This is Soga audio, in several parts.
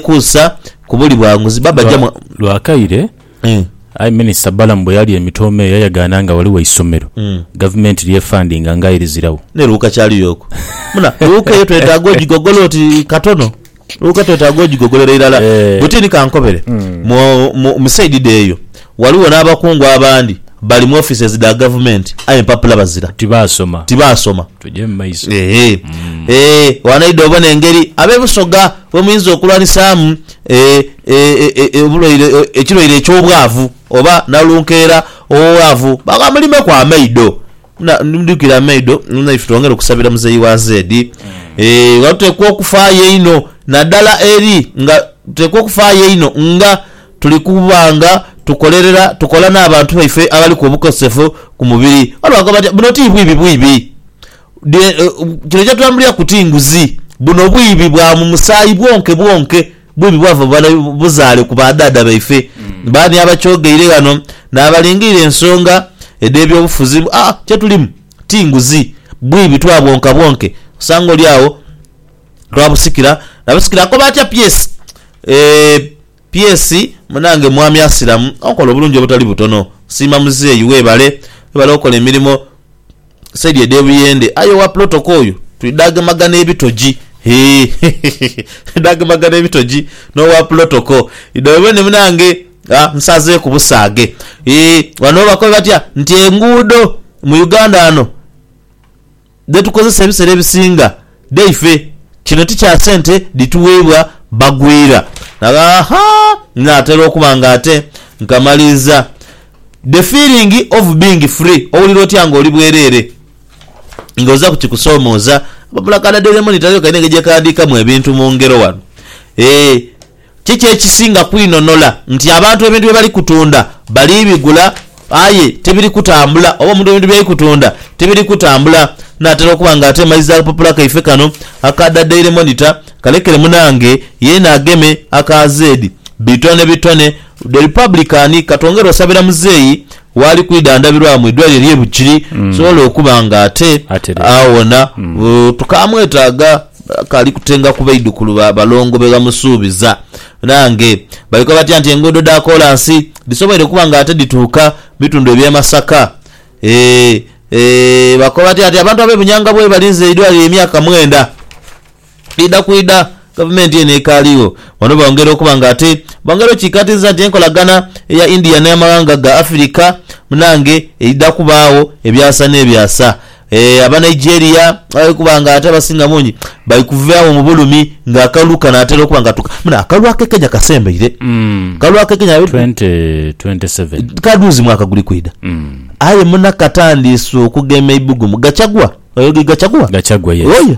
kusa ku buli bwanguzi baba Lwa, jamu. lwakaire, Mm. aye Minisita Balaam bwe yalya emitooma eyo yayagaana nga ghaligho eisomero Mm. Gavumenti ly'efandinga nga aye liziragho. Ne luuka kyali y'oku. Muna, luuka eyo twetaaga ogigogola oti katono. Luuka twetaaga ogigogolera irala. Eh. Bwetini kankobere, mu, mu, mu saidide eyo, Ghaligho n'abakungu abandi bali mu offices dha gavumenti aye empapula bazira. Tibaasoma. Tibaasoma. Tugye mu maiso. Eehee. Eehee. Wanaidha obone engeri ab'e Busoga bwe muyinza okulwanisaamu e, e, e, e, obulwaire, e, ekirwaire eky'obwavu, oba nalunkeera ow'obwavu. Baagha mulimeku amaido. Na, ndidhukira amaido, na ife twongere okusabira muzeeyi wa Zeedi. Eehee, nga tuteekwa okufaayo einho, nadala eri nga tuteekwa okufaayo einho nga. Tuli kuba nga tukolerera, tukola n'abantu baife abaliku obukosefu ku mubiri. Waliwo akoba ati, Buno ti bwibi bwibi. Kino kyetulambuliraku ti nguzi. Buno bwibi bwa mu musaayi bwonke bwonke. Bwibi bwava mu buzaale ku badhaadha baife. Baani abakyogeire ghano n'abalingiire ensonga edh'ebyobufuzi mbu, Aa, kyetulimu ti nguzi. Bwibi twabwonka bwonke. Osanga oli agho twabusikira na busikira. Akoba atya Pearse? Ee, PS munange mwami asiramu okola obulungi obutali butono nsiima muzeeyi webale webale okola emirimo saidi edhe buyende aye owa plot oka oyo tuli dhagemagana ebitoji hee hehehe tuli dhagemagana ebitoji nowa plot oka idha webone munange aah nsazeeku busaage eeh wano bakobe batya nti enguudo mu Uganda wano. dhe tukozesa ebisera ebisinga dhaife. Kino ti kya sente dhituweibwa bagwira. Aha! Natera okuba nga ate nkamaliiza. The feeling of being free, owulira otya nga oli bwerere nga oza ku kikusomooza? Ababula ka Daddy Lemon Taliyo kalina engeri gye kaghandiikamu ebintu mu ngero wano. Eeh. Kiki ekisinga kwinhonola, nti abantu ebintu bye bali kutunda bali bigula aye tibiri kutambula, oba omuntu ebintu by'ali kutunda tibiri kutambula? Naatera okuba nga ateemaiza akapapula kaife kano aka Da Daily Monitor, kalekere munange yeena ageme aka zeedi. Bitone bitone, The Republican, Katwongere osabira muzeeyi. Waali kwidhandhabirwa mu idwaaliro ery'e Bugiri tusobole okuba nga ate awona. Tukaamwetaaga, kaali kutenga ku baidhukulu ba balongo be bamusuubiza. Nange baikwa batya nti enguudo dha koolansi dhisoboire okuba nga ate dhituuka mu bitundu eby'e Masaka? Eeh, eeh. Bakoba batya nti abantu ab'e Bunyanga bwebalinze eidwaaliro emyaka mwenda? Idha ku idha, gavumenti eno ekaaligho. Bano bongera okuba nga ate bongera okikaatiiza nti enkolagana eya India n'amaghanga ga Afirika munange eidha kubaagho ebyasa n'ebyasa. Aba Nigeria bali kuba nga ate abasinga bungi bali kuvaagho mu bulumi nga akalulu kanaatera okuba nga tuka. Muno akalulu ak'e Kenya kasembaire. Akalulu ak'e Kenya biri ku. 2027. Ka dhuuzi mwaka guli kwidha. Aye muna katandiise okugema eibugumu. Gachagua, oyo ye Gachagua? Gachagua, yes. Oyo.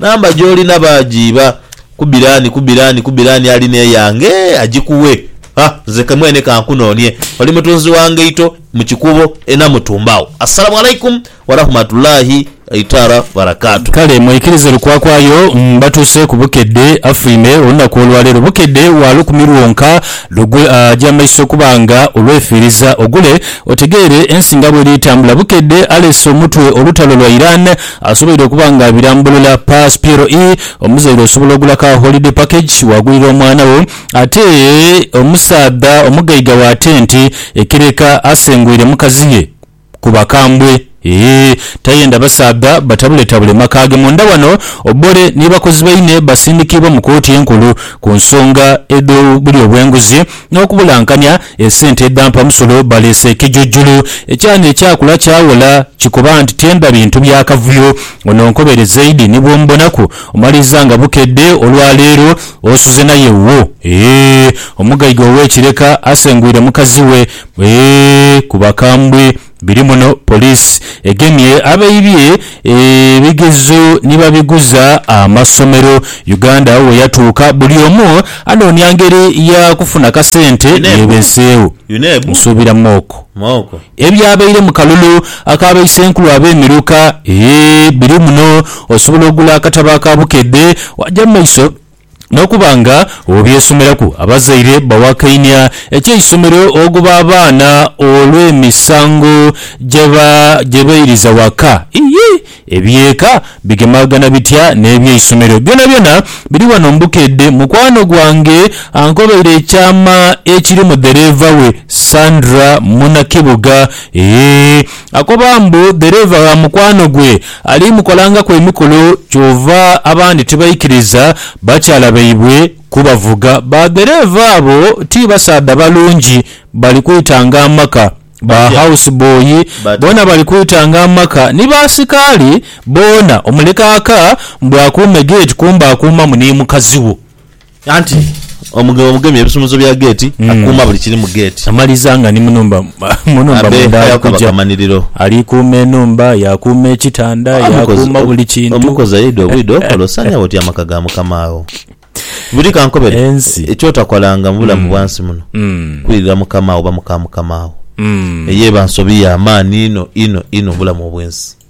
Namba gy'olina baagyiba. Kubira ani, kubira ani, kubira ani alina eyange agikuwe. Ha, nze ke mwene ka nkunoonie. Oli mutunzi wa ngaito mu kikuubo e Namutumba agho. Assalamu Alaikum Warahmatullahi Taala Wabarakaatuh. Kale mwikirize lukwakwayo mbatuuse ku Bukedde affuime olunaku olwaleero. Bukedde wa lukumi lwonka lugwe aja amaiso okuba nga olwefiiriza ogule otegeere ensi nga bweri etambula. Bukedde aleese omutwe olutalo lwa Iran Asoboire okuba nga abirambulula Pass Piero ii, Omuzaire osobola ogula ka holiday package wagulira omwana wo ate omusaadha omugaiga wa tenti ekereka asenguire mukazi ye ku bakambwe eeh tayenda basaadha batabuletabule maka ge munda wano Obore ni bakozi baine basindikiibwa mu kooti enkulu ku nsonga edh'obulyo bw'enguzi n'okubulankania esente edhampa musolo baleese ekijujulu ekyana ekyakula kyawola kikoba nti tyendha bintu bya kavuyo ono nkobere zaidi ni bwomubonaku omaliza nga bukedde olwa leero osuze naye wuwo eeh omugaiga ow'ekireka asengwire mukazi we eeh ku bakambwe. Biri muno poliisi egemye abaibye ebigezo ni babiguza amasomero. Uganda we yatuuka buli omu anoonia ngeri ya kufuna kasente yeebeseegho. Nsuubira mwoko ebyabaire mu kalulu aka baisenkulu ab'emiruka. Eeh biri muno osobola okugula akatabo aka Bukedde waaja mu maiso. N'okuba nga obyesomeraku, abazaire bawakainia eky'eisomero oghuba abaana olw'emisango gye beiriza waka. Ii, Eby'eka bigemaghana bitya n'eby'eisomero? Byonabyona biri wano mu Bukedde. Mukwano gwange ankobaire ekyama ekiri mu dhereeva we, Sandra Munakibuga. Ee. Akoba mbu dhereeva gha mukwano gwe ali mukolangaku emikolo kyova abandi tibaikiriza bakyala baibwe kubavuga. Ba dhereeva abo ti basaadha balungi, bali kwitanga amaka. Ba house boy boona bali kwitanga amaka ni baasikaali boona. Omulekaaka mbu akuume geeti kumbe akuumamu ni mukazi wo. Anti omugema omugemye ebisumuzo bya geeti, akuuma buli kiri mu geeti. Amaliza nga ni mu nhumba mu nhumba Abe munda ali aye kukaba kuja. kamaniriro. Ali kuuma enhumba, yaakuuma ekitanda, Aye omukozi- yaakuuma buli kintu. Omukozi aidha obwidha okola osaanira bw'otyo amaka ga mukama wo. Buli kankobere, Ensi. eky'otakolanga mu bulamu bwa nsi muno, Mm. kwirira mukama wo oba muka mukama wo. Mm. Eyo eba nsobi ya maani inho inho inho mu bulamu obw'ensi.